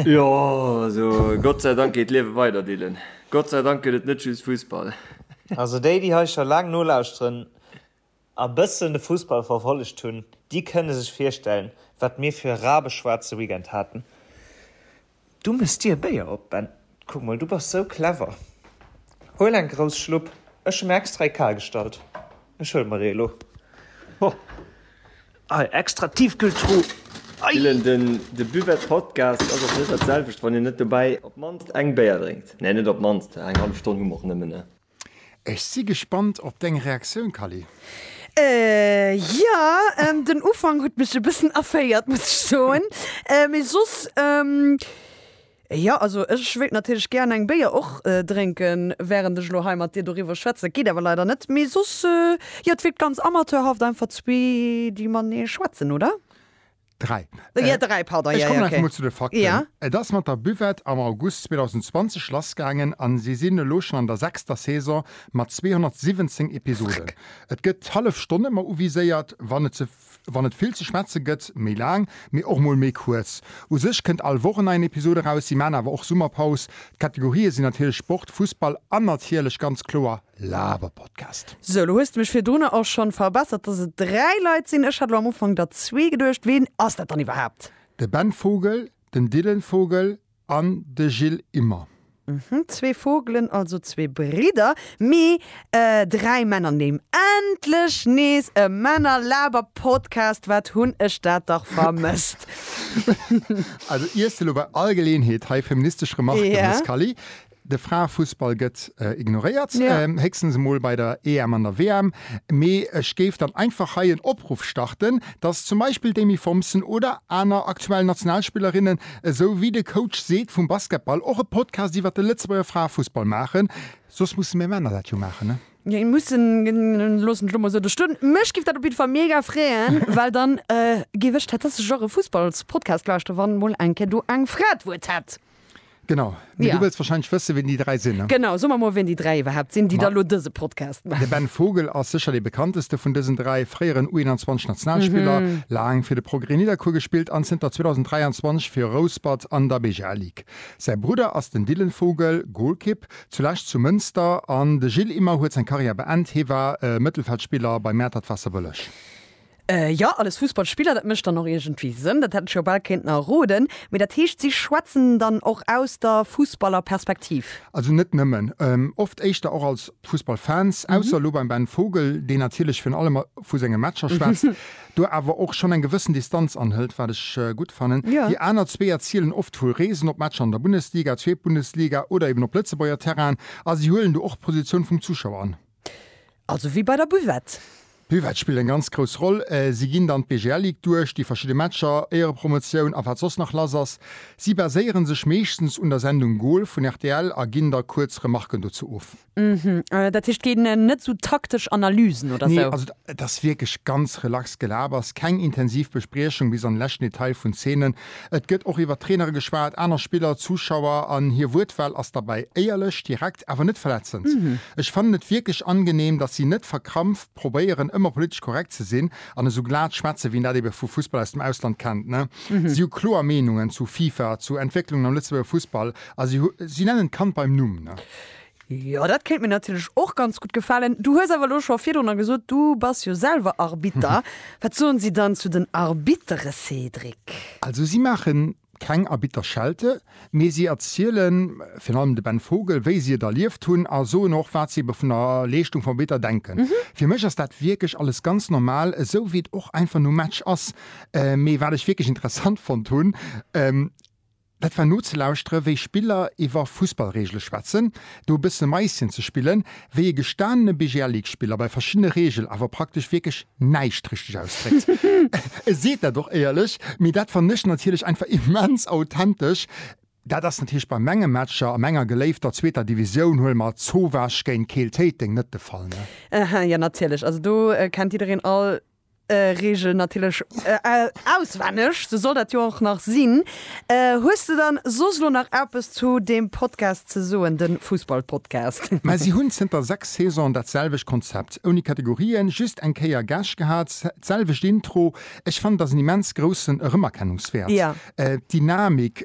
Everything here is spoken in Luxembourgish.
Jo, also Gott sei Dank geet d'Liewe weider, Dylan. Gott sei Dank gëtt et net just Fussball. Also déi, déi hei scho laang nolauschteren a bëssen de Fussball verfollegt hunn, déi kënne sech virstellen, wat mir fir e rabeschwaarze Weekend haten. Du méchs dir e Béier op, Ben. Kuck mol, du bass sou clever. Huel eng grouss Schlupp, ech hu mir extra ee Kar gestallt. Ech huele mer ee elo. Ho, hei, extra Tiefkühltruh. Gillen, De Buvette-Podcast ass och net dat selwecht, wann een net dobäi op d'mannst eng Béier drénkt. Nee, net op d'mannst, eng hallef Stonn hu mer och nëmmen. Ech si gespannt op deng Reaktioun Kally. Ehh jo, den Ufank huet mech e bëssen erféiert muss ech soen, mee soss jo. Also ech wéilt natierlech gären eng Béier och drénken während ech elo hei mat dir doriwwer schwätzen. Dat geet awer leider net, mee soss jo, et wierkt ganz amateurhaft einfach zwee déi matenee schwätzen, oder? 3. Ech kommen einfach mol zu de Fakten. Et ass mat der Buvette am August 2020 lassgaangen a si sinn elo schonn an der sechster Saison mat 217 Episoden. Et gëtt hallef Stonn ëmmer uviséiert, wann et vill ze schwätze gëtt, méi laang, mee och mol méi kuerz. U sech kënnt all Woch en neien Episod eraus, si maachen awer och Summerpaus. D'Kategorië sinn natierlech Sport, Fussball an natierlech ganz kloer Laber Podcast. Sou, lo hues de mech virdrunner och schon verbessert, dass et 3 Leit sinn. Ech hat lo am Ufank der zwee geduecht. Ween ass dat dann iwwerhaapt? De Ben Vogel, den Dylan Vogel an de Gilles Immer. Mhm, zwee Vogelen, also zwee Bridder, mee dräi Männernimm. Endlech nees e Männer-Laber Podcast, wat hunn ech dat dach vermësst. Also iers de lo bei all Geleeënheet hei feministesch Remarken, Scally? De Fraefussball gëtt ignoréiert, héchstens emol bei der EM an der WM. Mee ech géif dann einfach hei en Opruff starten, dass zum Beispill d'Amy Thompson oder aner aktuell Nationalspillerinnen, esou wéi de Coach seet vum Basketball, och e Podcast iwwert de Lëtzebuerger Fraefussball maachen. Soss musse mir Männer dat jo maachen, ne? Jo, mussen, loosse mech elo mol esou do stoen. Mech géif dat op jidde Fall mega freeën, well dann géif ech tatsächlech och e Fussballspodcast lauschteren, wann mol eng Kéier do eng Fra d'Wuert hätt. Genau. Mee ja. Du wëlls wahrscheinlech wësse ween déi 3 sinn. Ne? Genau, so mer mol ween déi 3 iwwerhaapt sinn, déi da lo dëse Podcast maachen. De Ben Vogel ass sécher dee bekannteste vun dësen 3, fréieren U21 Nationalspiller, mhm. laang fir de Progrès Nidderkuer gespillt an zënter 2023 fir Rouspert an der BGL Ligue. Säi Brudder ass den Dylan Vogel, Golkipp, zulescht zu Mënster an de Gilles Immer huet seng Karriär beend, hie war äh, Mëttelfeldspiller bei Mäertert Wasserbëlleg. Äh jo, alles Fussballspiller, dat mécht dann och iergendwéi Sënn, dat hätt ech jo bal kéinten erroden. Mee dat heescht, si schwätzen dann och aus der Fussballerperspektiv? Also net nëmmen. Oft éischter och als Fussballfans, ausser elo beim Ben Vogel, deen natierlech virun allem vu senge Matcher schwätzt, do awer och schonn eng gewëssen Distanz anhëlt, wat ech gutt fannen. Déi aner zwee erzielen oft vu Reesen op Matcher an der Bundesliga, Zweetbundesliga oder eben op Lëtzebuerger Terrainen a si huelen do och d'Positioun vum Zuschauer an. Also wéi bei der Buvette. D'Buvette spillt eng ganz grouss Roll. Si ginn dann d'BGL-Lig duerch, déi verschidde Matcher, Éierepromotioun a wat soss nach lass ass. Si baséieren sech meeschtens un der Sendung Gol vun rtl a ginn da kuerz Remarken dozou of. Uhmm. Dat heescht, et ginn net sou taktesch Analysen oder sou? Nee, also et ass wierklech ganz relax Gelabers. Keng intensiv Bespriechung bis an de leschten Detail vun Zeenen. Et gëtt och iwwer Trainere geschwat, aner Spiller, Zuschauer an hir Wuertwahl ass derbäi éierlech, direkt, awer net verletzend. Ech fannen et wierklech angenehm, dass si net verkrampft probéieren ëmmer politesch korrekt ze sinn an esou glat schwätzen, wéi een dat ebe vu Fussball aus dem Ausland kennt. Si hu kloer Meenungen zu FIFA, zu Entwécklungen am Lëtzebuerger Fussball a si nennen d'Kand beim Numm. Jo, dat kéint mir natierlech och ganz gutt gefalen. Du hues awer elo scho virdrunner gesot, du bass jo selwer Arbitter. Wat soen si dann zu den Arbittere, Cédric? Also si maache keng Arbitterschelte, mee si erziele virun allem de Ben Vogel, wéi si et erlieft hunn a soen och, wat si ebe vun der Leeschtung vum Arbitter denken. Fir mech ass dat wierklech alles ganz normal, esou wéi et och einfach nom Match ass. Mee wat ech wierklech interessant fonnt hunn, Dat war nozelauschteren, wéi Spiller iwwer Fussballreegele schwätzen. Do e bësse Maischen ze spillen, wéi e gestanene BGL-League-Spiller bei verschiddene Reegel awer praktesch wierklech näischt richteg ausdréckt. E seet dat och éierlech, mee dat fannen ech natierlech einfach immens authentesch. Dat ass natierlech bei menge Matcher a menger geléifter zweeter Divisioun, huele mer Zowesch géint Keel Téiteng, net de Fall, ne? Aha, jo natierlech, also do kennt jiddereen all Reegel natierlech auswenneg, sou soll dat jo och nach sinn. Hues de dann soss elo nach eppes zu deem Podcast ze soen, de Fussballpodcast? Mä si hunn zënter 6 Saisonen dat selwecht Konzept, ouni Kategorien, just eng Kéier Gäscht gehat, d'selwecht Intro. Ech fannen, et ass en immens groussen Erëmerkennungswäert, d'Dynamik.